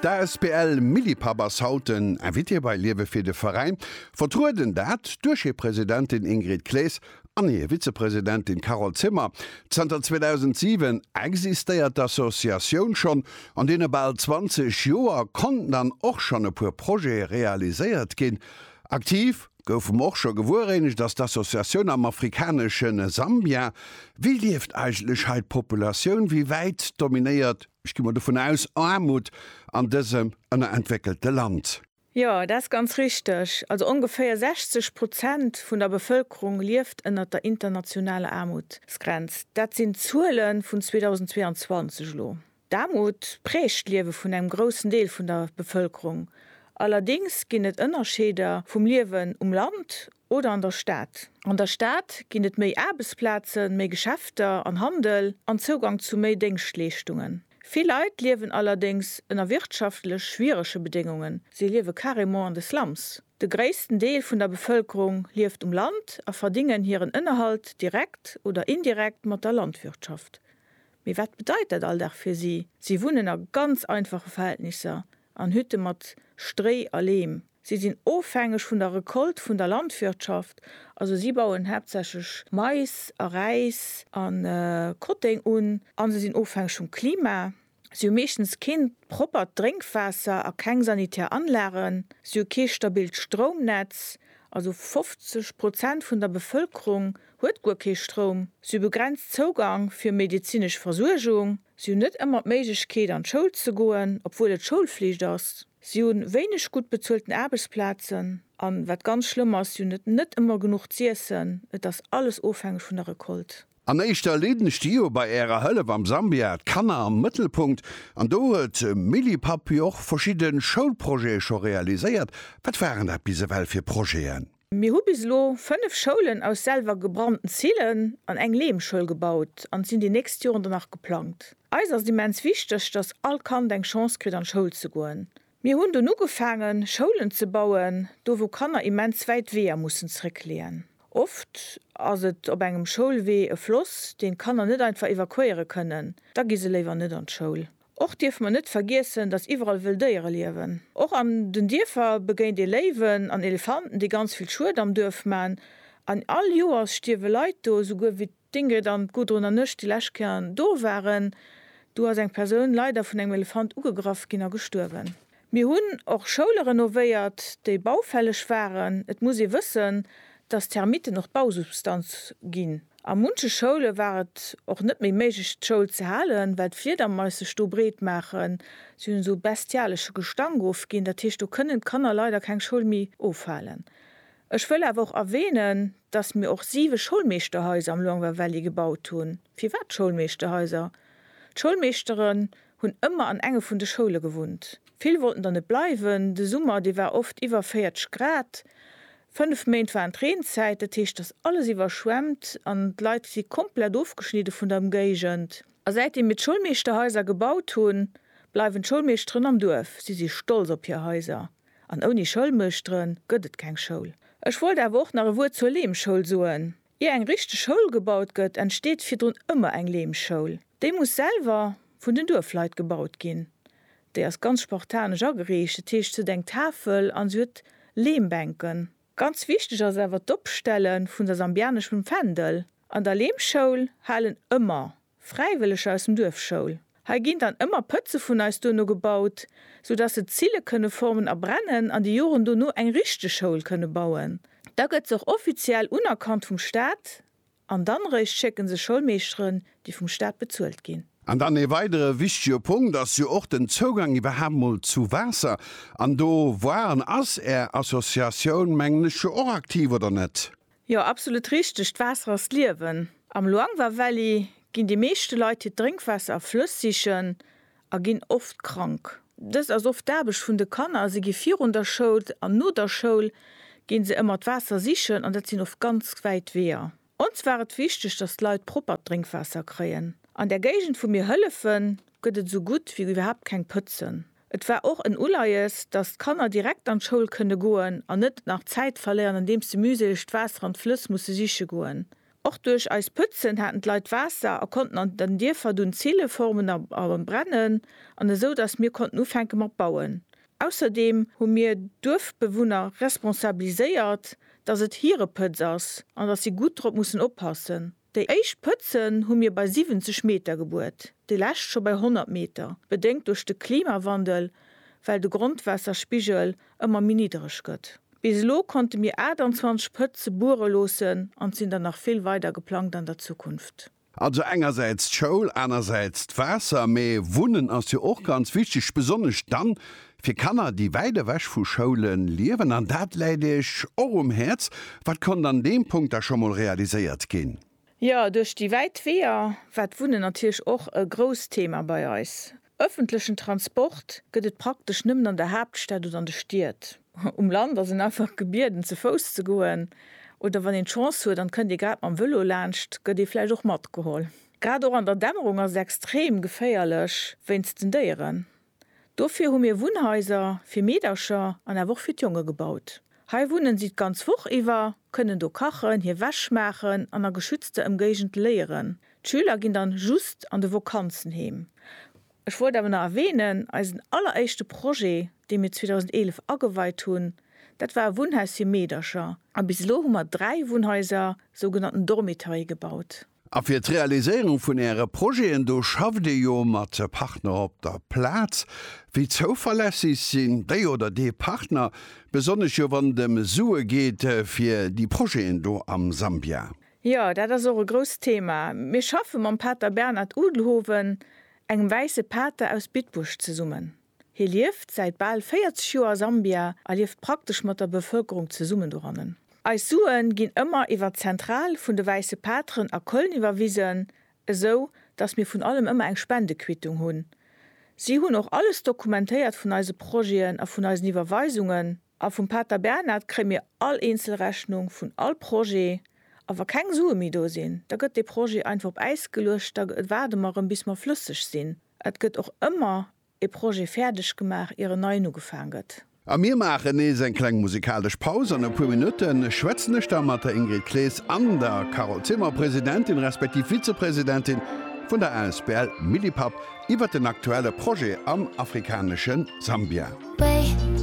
D'asbl Millipap ass haut den Invité bei Liewe fir de Veräin. Vertrueden dat duerch hir Presidentin Ingrid Claes an hir Vizepresidentin Carole Zimmer. Zanter 2007 existéiert d'Associatioun schonn. An deene bal 20 Joer konnten dann och schonn e puer Projete realiséiert ginn. Aktiv goufe mer och scho gewueréinescht ass d'Associatioun am afrikanesche Sambia. Wéi lieft eigentlech hei d'Populatioun? Wéi wäit dominéiert Ech gi mol dovun aus, Aarmut an dësem ënnerentwéckelte Land. Jo, dat ass ganz richteg. Also ongeféier 60 Prozent vun der Bevëlkerung lieft ënnert der internationaler Aarmutsgrenz. Dat sinn d'Zuele vun 2022 elo. D'Aarmut prägt d'Liewe vun engem groussen Deel vun der Bevëlkerung. Allerdéngs ginn et Ënnerscheeder vum Liewen um Land oder an der Stad. An der Stad ginn et méi Aarbechtsplazen, méi Geschäfter an Handel an Zougang zu méi Déngschtleeschtungen. Vill Leit liewen allerdéngs ënner wirtschaftlech schwierege Bedéngungen, si liewe carrément an de Slums. De gréissten Deel vun der Bevëlkerung lieft um Land a verdingen hiren Ënnerhalt direkt oder indirekt mat der Landwirtschaft. Mee wat bedeit dat Alldag fir si? Si wunnen a ganz einfache Verhältnisser, an Hütte mat Stréi a Leem. Si sinn ofhängeg vun der Recolte vun der Landwirtschaft, also si bauen haaptsächlech Mais a Räis a Kotténg un, a se sinn ofhängeg vum Klima. Si hu meeschtens keen proppert Drénkwaasser a keng sanitär Anlagen. Si hu kee stabilt Stroumnetz, also 50 Prozent vun der Bevëlkerung huet guer kee Stroum. Si hu begrenzt Zougang fir medezinesch Versuergung. Si hunn net ëmmer d'Méiglechkeet, an d'Schoul ze goen, obwuel et Schoulflicht ass. Si hu wéineg gutt bezuelten Aarbechtsplazen. A wat ganz schlëmm ass, si hunn et net ëmmer genuch z'iessen. Et ass alles ofhängeg vun der Recolte. An éischter leeden ech déi jo bei Ärer Hëllef am Sambia, d'Kanner am Mëttelpunkt. An do huet Milly Papy och verschidde Schoulprojete scho realiséiert. Wat waren dat bis ewell fir Projeten? Mir hu bis elo 5 Schoulen aus selwer gebrannten Zillen an eng Lehmschoul gebaut an et sinn déi nächst Joren der nach geplangt. Eis ass et immens wichteg, dass all Kand eng Chance kritt an d'Schoul ze goen. Mir hunn dunn ugefaangen Schoulen ze bauen, do wou Kanner immens wäit Weeër mussen zréckleeën. Oft ass et op engem Schoulwee e Floss, deen d'Kanner net einfach evakuéiere kënnen, da gi se léiwer net an d'Schoul. Och dierfe mer net vergiessen, datt iwwerall wëll Déiere liewen. Och an den Dierfer begéint ee Léiwen an Elefanten, déi ganz vill Schued am Duerf man. An all Joers stierwe Leit do. Esouguer wéi d'Ingrid an d'Gudrun an ech déi lescht Kéier do waren, do ass eng Persoun leider vun engem Elefant ugegraff ginn a gestuerwen. Mir hunn och Schoule renovéiert, déi baufälleg waren. Et muss ee wëssen, dass d'Termitten och d'Bausubstanz ginn. A munche Schoule war et och net méi méiglech, d'Schoul ze halen, well d'Fliedermais sech do breet maachen. Si hunn esou bestialesche Gestank ofginn. Dat heescht, do kënnen d'Kanner leider keng Schoul méi ofhalen. Ech wëll awer och erwänen, dass mir och siwe Schoulmeeschterhaiser am Luangwa Valley gebaut hunn. Firwat Schoulmeeschterhaiser? D'Schoulmeeschtere hunn ëmmer an enge vun de Schoule gewunnt. Vill wollten der net bleiwen. De Summer, dee war oft iwwer 40 Grad. Fënnef Méint waren d'Reenzäit, dat heescht, datt alles iwwerschwemmt an d'Leit si komplett ofgeschnidde vun der Ëmgéigend. A säitdeem mir d'Schoulmeeschterhaiser gebaut hunn, bleiwen d'Schoulmeeschteren am Duerf. Si si stolz op hir Haiser. An ouni Schoulmeeschtere gëtt et keng Schoul. Ech wollt awer och nach e Wuert zur Leemschoul soen. Ier eng richteg Schoul gebaut gëtt, entsteet virdrun ëmmer eng Lehmschoul. Déi muss selwer vun den Duerfleit gebaut ginn. Déi ass ganz spartanesch ageriicht, dat heescht, se huet eng Tafel an se huet Lehmbänken. Ganz wichteg ass awer d'Opstelle vun der Sambianesch mam Fändel. An der Lehmschoul halen ëmmer Fräiwëlleger aus dem Duerf Schoul. Hei ginn dann ëmmer Pëtze vun eis duerno gebaut, sou dass se Zille kënne formen a brennen an déi Joren dono eng richteg Schoul kënne bauen. Da gëtt se och offiziell unerkannt vum Staat an dann eréischt schécken se Schoulmeeschteren, déi vum Staat bezuelt ginn. An dann ee weidere wichtige Punkt ass jo och den Zougang iwwerhaapt mol zu Waasser. An do war an ass Är Associatioun, mengen ech, jo och aktiv, oder net? Jo, absolut richteg, d'Waasser ass d'Liewen. Am Luangwa Valley ginn déi meeschte Leit hiert Drénkwaasser a Flëss sichen a ginn oft krank. Dëst ass oft d'Aarbecht vun de Kanner, si gi virun der Schoul an no der Schoul ginn se ëmmer d'Waasser sichen an dat sinn oft ganz wäit Weeër. Ons war et wichteg, dass d'Leit proppert Drénkwaasser kréien. An der Géigend wou mir hëllefen, gëtt et esou gutt wéi iwwerhaapt keng Pëtzen. Et war och en Uleies, datt d'Kanner direkt an d'Schoul kënne goen an net nach Zäit verléieren, andeems se mühseleg d'Waasser an d'Flëss musse siche goen. Och duerch eist Pëtzen haten d'Leit Waasser a konnten an den Dierfer dunn Zille formen a brennen an esou, datt mir konnten ufänke mat bauen. Ausserdeem hu mir d'Duerfbewunner responsabiliséiert, datt et hire Pëtz ass an datt si gutt drop mussen oppassen. Déi éischt Pëtzen hu mir bei 70 Meter gebuert, déi lescht scho bei 100 Meter, bedéngt duerch de Klimawandel, well de Grondwaasserspigel ëmmer méi niddereg gëtt. Bis elo konnte mir 28 Pëtze buere loossen an et sinn der nach vill weider geplangt an der Zukunft. Also engersäits d'Schoul, anersäits d'Waasser, mee Wunnen ass jo och ganz wichteg, besonnesch dann, Fir Kanner, déi wäit ewech vu Schoule liewen, an dat läit Iech och um Häerz, wat konnt an deem Punkt da scho mol realiséiert ginn? Jo, duerch déi wäit Weeër war d'Wunnen natierlech och e grousst Thema bei eis. Ëffentlechen Transport gëtt et praktesch nëmmen an der Haaptstad oder an de Stied. Um Land ass een einfach gebieden, ze Fouss ze goen, oder wann een d'Chance huet an kënnt ee grad mam Vëlo laanscht, gëtt ee vläicht och matgeholl. Grad och an der Dämmerung ass et extrem geféierlech wéinst den Déieren. Dofir hu mir Wunnhaiser fir Meedercher an awer och fir d'Jonge gebaut. Hei wunnen si d'ganz Woch iwwer, kënnen do kachen, hir Wäsch maachen an a geschützter Emgéigend léieren. D'Schüler ginn dann just an de Vokanzen heem. Ech wollt awer nach erwähnen, eisen alleréischte Projet, dee mir 2011 ageweit hunn, dat war e Wunnhaus fir Meedercher. A bis elo hu mer dräi Wunnhaiser, sougenannten Dormitory, gebaut. A fir d'Realiséierung vun Äre Projeten, do schafft Dir jo mat Partner op der Plaz. Wéi zouverlässeg sinn déi oder dee Partner, besonnesch jo wann et ëm Sue geet fir déi Projeten do am Sambia? Jo, dat ass och e grousst Thema. Mir schaffe mam Pater Bernhard Udelhoven, engem wäisse Pater aus Bitburg, zesummen. Hie lieft säit bal 40 Joer a Sambia a lieft praktesch mat der Bevëlkerung zesummen dorannen. Eis Sue ginn ëmmer iwwer d'Zentral vun de Wäisse Pateren a Köln iwwerwisen, esou datt mir vun allem ëmmer eng Spendequittung hunn. Si hunn och alles dokumentéiert vun eise Projeten a vun eisen Iwwerweisungen. A vum Pater Bernhard kréie mir all eenzel Rechnung vun all Projet. A wa keng Sue méi do sinn, da gëtt dee Projet einfach op Äis geluecht, da waarde mer erëm bis mer flësseg sinn. Et gëtt och ëmmer e Projet fäerdeg gemaach, ier en neien ugefaang gëtt. A mir maachen nees eng kleng musikalesch Paus. An e puer Minutte schwätzen ech da mat der Ingrid Klees an der Carole Zimmer, Presidentin respektiv Vizepresidentin vun der Asbl Millipap, iwwert den aktuelle Projet am afrikanesche Sambia.